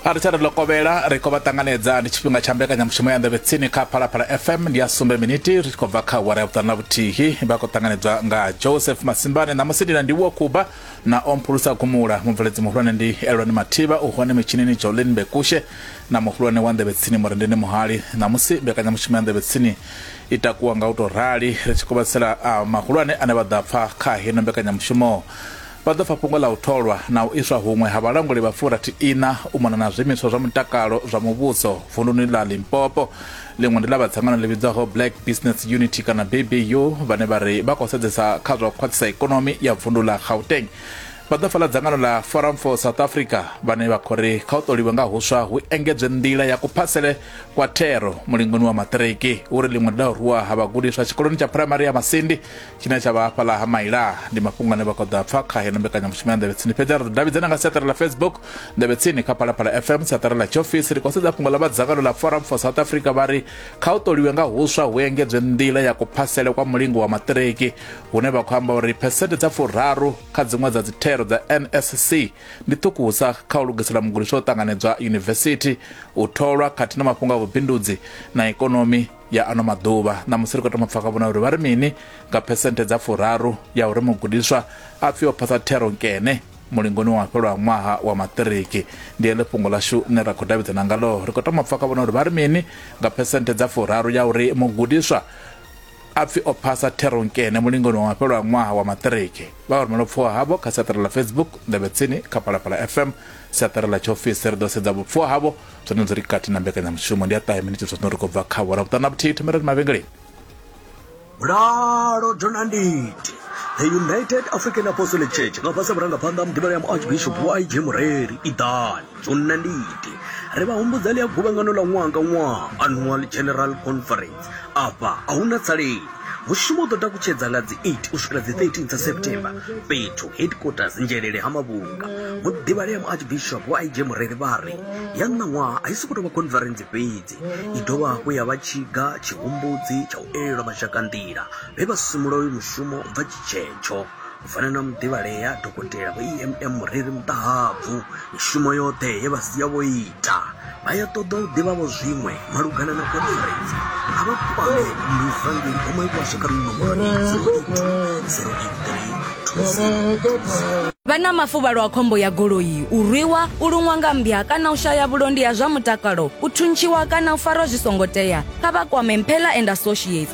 a ri tsha ri lokovhela ri khou vha ṱanganedza ndi tshifhinga tsha mbekanyamushumo ya nḓevhe tsini kha phalaphala fm ndi ya sumbe miniti ri tshi khou bva kha wara ya vhuṱanu na vhuthihi vha khou ṱanganedzwa nga joseph masimbane ṋamusi ndi na ndiwo kuba na omphulusa gumula mubveledzi muhulwane ndi elwani mathivha u hone mitshinini jolin bekushe na muhulwane wa nḓevhe tsini murendeni muhali ṋamusi mbekanyamushumo ya nḓevhe tsini i takuwa nga u tou rali ri tshi khou vhatsela mahulwane ane vha ḓa pfa kha heno mbekanyamushumo Vha ḓo pfa fhungo ḽa u tholwa na u iswa huṅwe ha vhalanguli vha furathi iṋa u mona na zwiimiswa zwa mutakalo zwa muvhuso vunduni ḽa Limpopo. Ḽiṅwe ndi ḽa vha dzangano ḽi vhidzwaho Black Business Unity kana BBU vhane vha ri vha khou sedzesa kha zwa u khwaṱhisa ikonomi ya vundu ḽa Gauteng. Vha ḓo pfa ḽa dzangano ḽa Forum for South Africa vhane vha khou ri kha u ṱoliwe nga huswa hu engedzwe nḓila ya kuphasele kwa thero mulingoni wa maṱiriki. Hu ri ḽiṅwe ndi ḽa u rwiwa ha vhagudiswa tshikoloni tsha phuraimari ya Masindi tshine tsha vha hafhaḽa ha maila ndi mafhungo ane vha khou ḓo a pfa kha heino mbekanyamushumo ya nḓevhe tsini fhedzi a ri ḓo davhidzana nga siaṱari ḽa facebook nḓevhe tsini kha phalaphala fm siaṱari ḽa tshiofisi ri khou sedza fhungo ḽa vha dzangano ḽa forum for south africa vha ri kha u ṱoliwe nga huswa hu engedzwe nḓila ya kuphasele kwa mulingo wa maṱiriki hune vha khou amba uri phesente dza furaru kha dziṅwe dza dzithero dza nsc ndi ṱhukusa kha u lugisela mugudiswa u ṱanganedzwa yunivesithi u tholwa khathihi na mafhungo a vhubindudzi na ikonomi ya ano maḓuvha. Ṋamusi ri khou thoma u pfa kha vhona uri vha ri mini nga phesenthe dza furaru ya uri mugudiswa a pfi o phasa thero nkene mulingoni wa fhelwa ṅwaha wa maṱiriki. Ndi heḽi fhungo ḽashu ḽine ra khou davhidzana ngaḽo. Ri khou thoma u pfa kha vhona uri vha ri mini nga phesenthe dza furaru ya uri mugudiswa a pfi o phasa thero nkene mulingoni wa fhelwa ṅwaha wa maṱiriki. Vha a rumela vhupfuwa havho kha siaṱari ḽa Facebook Nḓevhetsini kha Phalaphala FM siaṱari ḽa tshiofisi. Ri ḓo sedza vhupfuwa havho zwono dzi ri kati na mbekanyamushumo ndi a ṱahe miniti zwa zwino ri khou bva kha wara vhuṱanu na vhuthihi thomelani mavhengeleni mulalo donanditi the united african apostolic church nga fhasi vhurangaphanḓa mudimela ya muarchbishop yg mureri iḓani dzonanditi ri vha humbudza ḽi ya guvhangano ḽa ṅwaha nga ṅwaha annual general conference Afha a hu na tsalei. Mushumo u ḓo takutshedza nga dzi 8 u swikela dzi 13 dza September fhethu headquarters Nzhelele ha Mavhunga. Muḓivhalea Muarchbishop wa IG Mureri vha ri ya ṋaṅwaha a i sokou tou vha khonferentsi fhedzi, i dovha hafhu ya vha tshiga tshihumbudzi tsha u elelwa mashakanḓila vhe vha simula uyu mushumo u bva tshitshetsho. U fana na muḓivhalea dokotela vho EMM Mureri Muṱahabvu, mishumo yoṱhe ye vha sia vho ita, vha ya ṱoḓa u ḓivha vho zwiṅwe malugana na khonferentsi. A vha kwame MISA ngei Goma i washa kha minomboroni 083 Vha na mafuvhalo a khombo ya goloi, u rwiwa, u luṅwa nga mmbya kana u shaya vhulondi ha zwa mutakalo, u thuntshiwa kana u farwa zwi songo tea, kha vha kwame Mphela and Associates